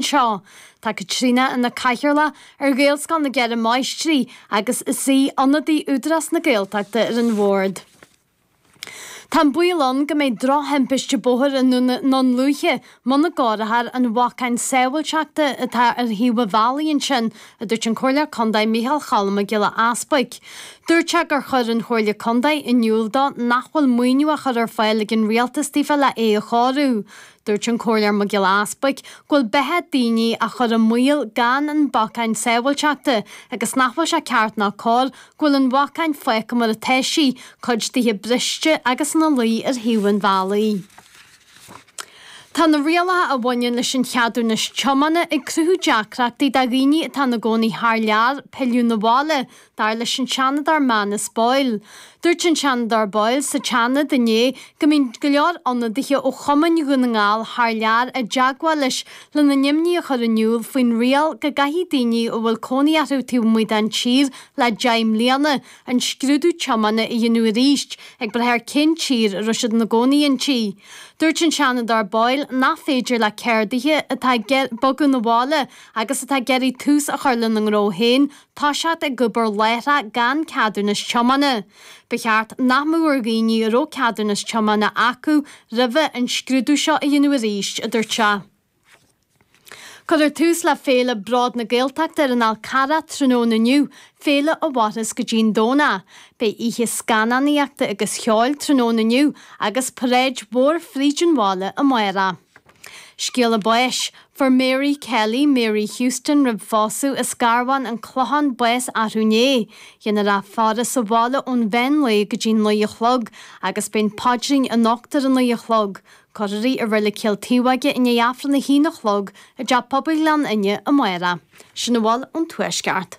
Anseo, tá Caitríona ina cathaoirleach ar Ghaelscoil na gCeithre Máistrí agus is í ionadaí Údarás na Gaeltachta ar an bhord. Tá an baol ann go mbeidh drochthimpiste bóthair i nDún Lúiche muna gcóireofar an bhacainn sábháilteachta atá ar thaobh an bhealaigh ansin, a dúirt an Comhairleoir Contae Micheál Cholm Mac Giolla Easbuic. Dúirt sé gur chuir an Chomhairle Contae in iúl dó nach bhfuil maoiniú á chur ar fáil ag an Rialtas daofa le é a chóiriú. Dúirt an Comhairleoir Mac Giolla Easbuic go bhfuil beatha daoine á chur i mbaol gan an bacainn sábháilteachta agus nach bhfuil sé ceart ná cóir go bhfuil an bhacainn fágtha mar atá sí, cuid dithe briste agus ina luí ar thaobh an bhealaigh. Tá na rialacha a bhaineann leis an cheadúnas tiomána ag cruthú deacrachtaí do dhaoine atá ina gcónaí thar lear pilleadh na bhaile, dar leis an Seanadóir Manus Boyle. Dúirt an Seanadóir Boyle sa tSeanad inné go mbíonn go leor ionadaithe ó chumainn Dhún na nGall thar lear i dteagmháil leis lena n-imní a chur in iúl faoin riail go gcaithfidh daoine a bhfuil cónaí orthu taobh amuigh den tír le deich mbliana an scrúdú tiomána a dhéanamh arís ag brath ar cén tír a raibh siad ina gcónaí inti. Dúirt an Seanadóir Boyle nach féidir le ceardaithe atá ag bogadh na bhaile agus atá ag iarraidh tús a chur lena ngnó féin toiseacht ag obair láithreach gan ceadúnas tiomána. Ba cheart nach mbeadh ar dhaoine a raibh ceadúnas tiomána acu roimhe an scrúdú seo a dhéanamh arís, a dúirt sé. Cuirfear tús le féile Bród na Gaeltachta ar an Fhál Carrach tráthnóna inniu, féile a mhairfeas go dtí an Domhnach. Beidh oíche scannánaíochta agus cheoil tráthnóna inniu agus paráid mhór fríd an bhaile amárach. Scéala báis. Fuair Mary Kelly, Mary Houston roimh phósadh, as Garbhán, An Clochán bás athrú inné. Déanfar í a fhaire sa bhaile ón mheán lae go dtí naoi a chlog agus beidh an paidrín anocht ar a naoi a chlog. Cuirfear í i Reilig Chill Taobhóige i ndiaidh Aifreann a haon a chlog i dTeach Pobail Ghleann Fhinne amárach. Sin a bhfuil ón Tuaisceart.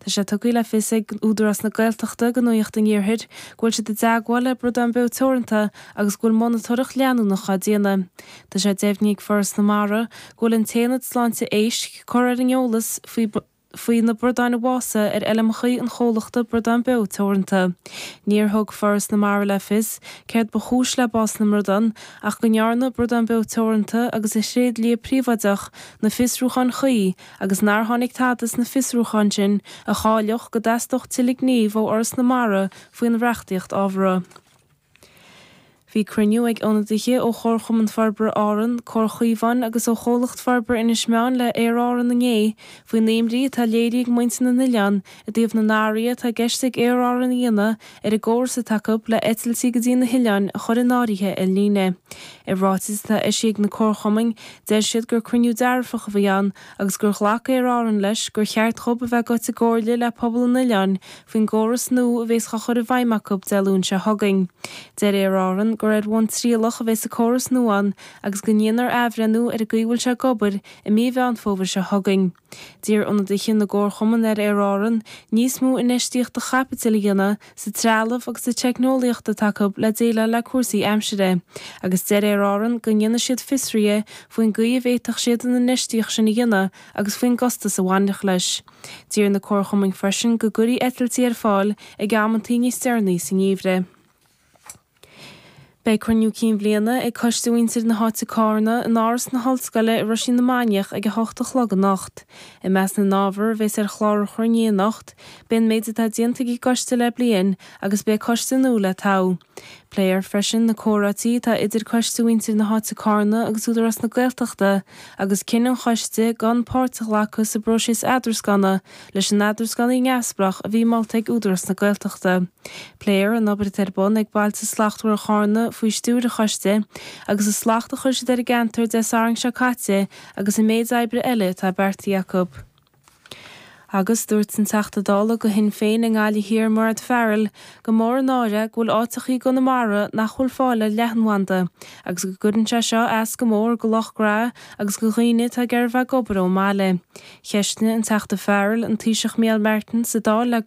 Tá sé tugtha le fios ag Údarás na Gaeltachta do Nuaíocht an Iarthair go bhfuil siad i dteagmháil le Bradán Beo Teoranta agus go bhfuil monatóireacht leanúnach á déanamh. Tá sé deimhnithe ag Foras na Mara go bhfuil an tAonad Sláinte Éisc curtha ar an eolas faoi na bradáin a bhásaigh ar fheilmeachaí an chomhlachta Bradán Beo Teoranta. Níor thug Foras na Mara le fios céard ba chúis le bás na mbradán ach go ndearna Bradán Beo Teoranta agus a thréidlia príobháideach na fiosrúcháin chuí agus nár tháinig tada as na fiosrúcháin sin a chiallódh go dteastódh tuilleadh gnímh ó Fhoras na Mara faoin reachtaíocht ábhartha. Bhí cruinniú ag ionadaithe ó Chomharchumann Forbartha Árann, Comhar Caomhán agus ó Chomhlacht Forbartha Inis Meáin le Aer Árann inné faoin imní atá léirithe ag muintir na n-oileán I dtaobh na n-athruithe atá i gceist ag Aer Árann a dhéanamh ar an gcóras atá acu le eitiltí go dtí na hoileáin a chur in áirithe ar líne. I ráiteas atá eisithe ag na comharchumainn, deir siad gur cruinniú dearfach a bhí ann agus gur ghlac Aer Árann leis gur cheart dhóibh a bheith ag goil i gcomhairle le pobal an oileáin faoin gcóras nua a bhéas á chur i bhfeidhm acu Dé Luain seo chugainn. Deir Aer Árann gur ar bhonn trialach a bhéas an córas nua ann agus go ndéanfar athbhreithniú ar an gcaoi a bhfuil sé ag obair i mí Mheán Fómhair seo chugainn. D'iarr ionadaithe na gcomharchumann ar Aer Árann níos mó infheistíochta chaipitil a dhéanamh sa trealamh agus sa teicneolaíocht atá acu le déileáil le cúrsaí aimsire agus deir Aer Árann go ndéanfaidh siad fiosruithe faoin gcaoi a bhféadfadh siad an infheistíocht sin a dhéanamh agus faoin gcostas a bhainfeadh leis. D'iarr na comharchumainn freisin go gcuirfí eitiltí ar fáil ag amanntaí níos deireanaí sa ngeimhreadh. Beidh Cruinniú Cinn Bhliana ag Coiste Mhuintir na hÁite Cárna in Áras na hOllscoile i Roisín na Mainiach ag 8 a chlog anocht. I measc na n-ábhar a bheas ar chlár an chruinnithe anocht, beidh an méid atá déanta ag an gCoiste le bliain agus beidh Coiste nua le toghadh. Pléifear freisin na comhráití atá idir Coiste Mhuintir na hÁite Cárna agus Údarás na Gaeltachta agus cinneadh an Choiste gan páirt a ghlacadh sa bpróiseas eadrascanna leis an eadránaí neamhspleách a bhí molta ag Údarás na Gaeltachta. Pléifear an obair atá ar bun ag Bailte Slachtmhara Chárna faoi stiúir an choiste agus an slacht a chuir siad ar an gceantar Dé Sathairn seo caite agus an méid oibre eile atá beartaithe acu. Agus dúirt an Teachta Dála go Shinn Féin i nGaillimh Thiar Mairéad Farrell gur mór an náire go bhfuil áiteacha i gConamara nach bhfuil fáil ar leathanbhanda agus go gcuireann sé seo as go mór go lucht gnó agus go dhaoine atá ag iarraidh a bheith ag obair ón mbaile. Cheistigh an Teachta Farrell an Taoiseach Micheál Martin sa Dáil le go.